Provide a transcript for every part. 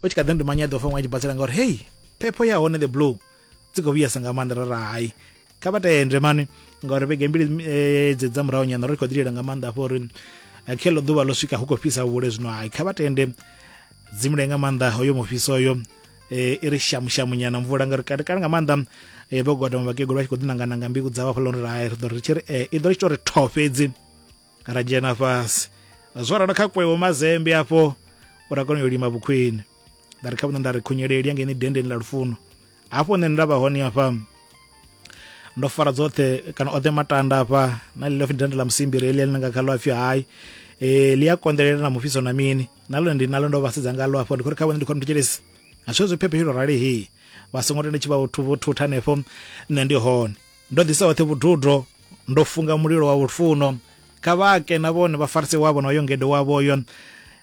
u tshi kha ḓi ndi manya ḓo fa ṅwe a tshi basela ngauri hei phepho ya hone the blue dzi khou vhuyesa nga maanḓa ra ra hai kha vha tende mani ngauri vhege mbili eh, dze dza murahu nyana ri khou ḓilela nga maanḓa afho uri eh, khe ḽo ḓuvha ḽo swika hu khou fhisa vhule zwino hai kha vha tende dzimule nga maanḓa hoyo mufhiso oyo eh, i ri shamushamu nyana mvula ngauri kale kale nga maanḓa eh, vho godoma vhakegulu vha tshi khou ḓinangananga mbiku dzavho hafhaḽa uri hai ri ḓo ri tshi ri eh, i ḓo ri tshi tou ri tho fhedzi ra dzhena fhasi zwo ralo kha kwewo mazembe afho uri a kone u lima vhukhwini nda ri kha vhune nda ri khunyeleli ya ngeni dendeni ḽa lufuno hafho nṋe nda vha hone afha ndo fara dzoṱhe kana oṱhe matanda afha na ḽi lofhi dende ḽa musimbiri heḽi ḽi nga kha ḽo apfhi hayi eh ḽi a konḓelela na mufhiso na mini na lone ndi na ndo vha sedza ngaḽo afho ndi khou ri kha vhone ndi khou nthetshelesa a zwi zwi phephe rali he vha songo tenda tshi vha thutha hanefho nṋe ndi hone ndo ḓisa hoṱhe vhududo ndo funga mulilo wa lufuno kha vha ke na vhone vha farise wavho na uyo ngede wavhoyo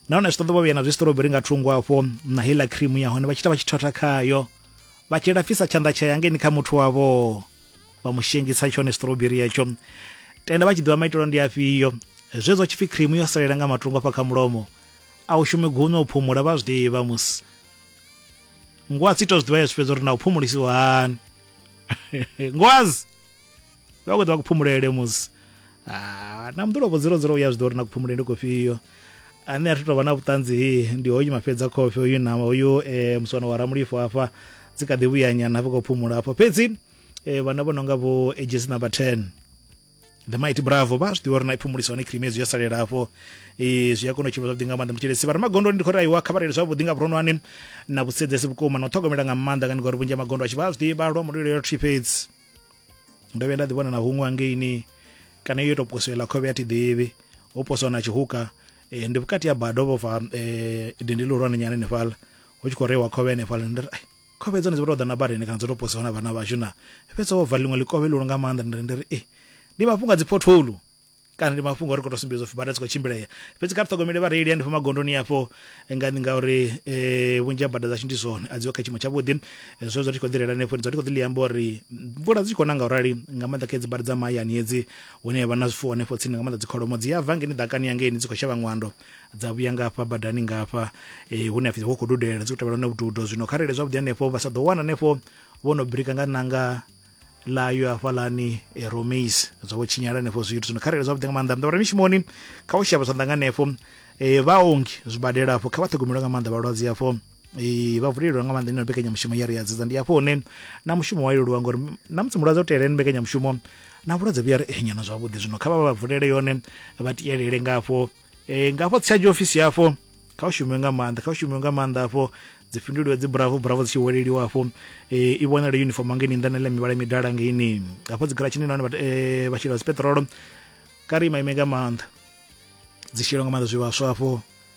nahone zwi ṱoḓa vha vhuya na zwistroberi nga thungo afho na heiḽa cream ya hone vha tshi ita vha tshi thotha khayo vha tshi lafhisa tshanḓa tsha yangeni kha muthu wavho vha mu shengisa tshone stroberi yatsho tenda vha tshi ḓivha maitelo ndi afhio zwezwo tshipfi cream yo salela nga matungo afha kha mulomo a u shume gunya u phumula vha zwi ḓivha musi ngwa si to zwi ḓivha ya zwi fhedza uri na u phumulisiwa hani ngwazi vha khou ḓa ku phumulele musi ah, na mḓulopo dziro dziro u ya zwi ḓo uri na ku phumulele ndi kofhio ane a thu tou vha na vhuṱanzi he ndi hoyu mafhedza khofhe uyu na uyu um eh, muswana wa ramulifo hafha dzi kha ḓi vhuyanyana hafha khou phumula hafho fhedzi um eh, vhana vho no nga vho ages number ten the mighty bravo vha zwi ḓivha uri na iphumulisa hone cream hezwi ya salela hafho e, zwi a kona u tshimbila zwavhuḓi nga maanḓa mutshelesi vha re magondoni ndi khou ri aiwa kha vha reile zwavhuḓi nga vhuronwane na vhusedzesi vhukuma na u ṱhogomela nga maanḓa ngani ngori vhunzhi ha magondo a tshi vha a zwi ḓivha lwa mulilo yo thi fhedzi ndo vhuya nda ḓivhona na huṅwe hangeini kana yo tou posoela khovhe ya thi ḓivhi ho poswa na tshihuka e, ndi vhukati ha bado vhofha e, dindi lihulwane nyana henefhala hu tshi khou reiwa khovhe henefhala ndi ri Khovhe dzone dzi vha tou ḓa na badani kana dzo tou posiwa na vhana vhashu na fhedza wo vala ḽiṅwe ḽikovhe ḽihulu nga maanḓa nda ri ndi ri, Ee, ndi mafhungo a dzi pothole kana ndi mafhungo a uri khou tou sumbedza u pfi bada dzi khou tshimbilea. Fhedzi kha ri ṱhogomele vhareili hanefho magondoni afho nga ngauri vhunzhi ha bada dzashu ndi zwone a dzi ho kha tshiimo tshavhuḓi. Zwe zwa ri tshi khou ḓi reila hanefho ndi dzula ndi khou ḓi ḽi amba uri mvula dzi tshi khou na nga u rali nga maanḓa kha hedzi bada dza mahayani hedzi hune ha vha na zwifuwo hanefho tsini nga maanḓa dzi kholomo dzi a bva hangeini ḓakani ya ngeini dzi khou shavha ṅwando. dza vhuya nga hafha badani nga hafha eh, hune a pfi ho khou dudela dzi khou tevhela na vhududo zwino kha rele zwavhuḓi hanefho vha sa ḓo wana hanefho vho no birika nga nanga ḽayo hafhalani eh, romis zwa vho tshinyala hanefho zwithu zwino kha rele zwavhuḓi nga maanḓa mdavhura mishumoni kha u shavha zwanḓa nga hanefho eh, vhaongi zwibadela afho kha vha ṱhogomelo nga maanḓa vhalwadze afho Ee, vha vulelwa nga maanḓa ino mbekanyamushumo ya ri ya dzedza ndi hafho hune na mushumo wa leluwa ngori na musi mulwadze o teela ene mbekanyamushumo na vhulwadze vhuya ri nyana zwavhuḓi zwino kha vha vha vulele yone vha tielele nga hafho e, nga hafho tshiadzhi ofisi hafho kha u shumiwe nga maanḓa kha u shumiwe nga maanḓa hafho dzi fhinduliwe dzi bravo bravo dzi tshi weleliwa hafho e, i vhonale uniform ngeni nnḓa na ḽa mivhala midala ngeni hafho dzi garatshini nahone vha- eh, vha shela dzi peṱirolo kha ri imaime nga maanḓa dzi shela nga maanḓa zwivhaswa hafho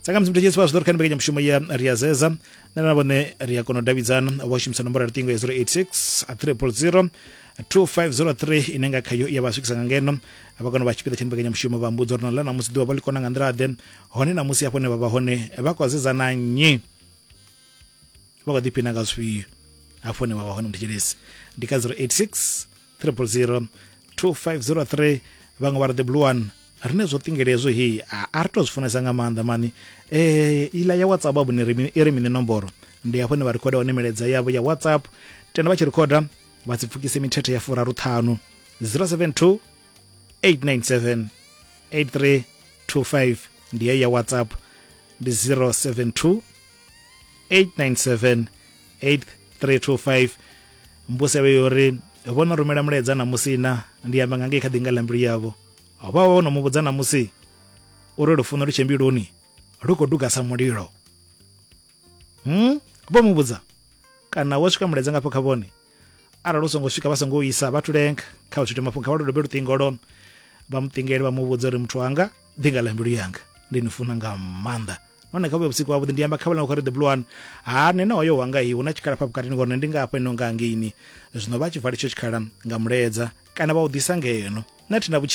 tsakamusi muthu tshesi vha zwi ḓo ri kha ni mbekanyamushumo ya ri a zeza nṋe na vhone ri a kona u davhidzana u vha shumisa nomboro ya luṱingo ya 086 a triple 0 2503 ine nga khayo ya vha swikisa nga ngeno vha kona u vha tshipiḓa tsha mbekanyamushumo vha mbudza uri na ḽa namusi ḓuvha vha ḽi kona nga nḓila ḓe hone namusi hafho ne vha vha hone vha khou zedzana nnyi vha khou ḓiphina nga zwifhio hafho ne vha vha hone muthu tshelesi ndi kha 086 triple zero 2503 vhaṅwe vha ri the blue one rine zwo ṱingele hezwo heyi a ri to zwi funesa nga maanḓa mani um eh, iḽa ya whatsapp abo ni i ri mini nomboro ndi hafho ne vha rikhoda hone milaedza yavho ya whatsapp tenda vha tshi rikhoda vha si pfukise mithethe ya furaru ṱhanu 072 897 8325 ndi heyi ya whatsapp ndi 072 897 8325 mbuselo yo ri vho no rumela mulaedza na musi na ndi amba nga ngei kha ḓinga ḽa mbilu yavho vha vha no mu vhudza na musi uri lufuno lu tshembiluni lu khou duga sa mulilo hmm? vho mu vhudza kana wo swika mulaedza ngafho kha vhone arali u songo swika vha songo isa vha thulenga kha u tshithu mafhungo kha vha lu dobe luṱingo lwone vha muṱingele vha mu vhudza uri muthu wanga ndi nga ḽa mbilu yanga ndi ni funa nga maanḓa nahone kha vhuya vhusiku havhuḓi ndi amba khavhela khori the blue one ha nṋe na hoyo wanga hi hu na tshikhala pha vhukati ni ngori nṋe ndi nga hafha ino nga ngeini zwino vha tshi vala itsho tshikhala nga muledza kana vha u ḓisa ngeno nṋe thi na vhutshilo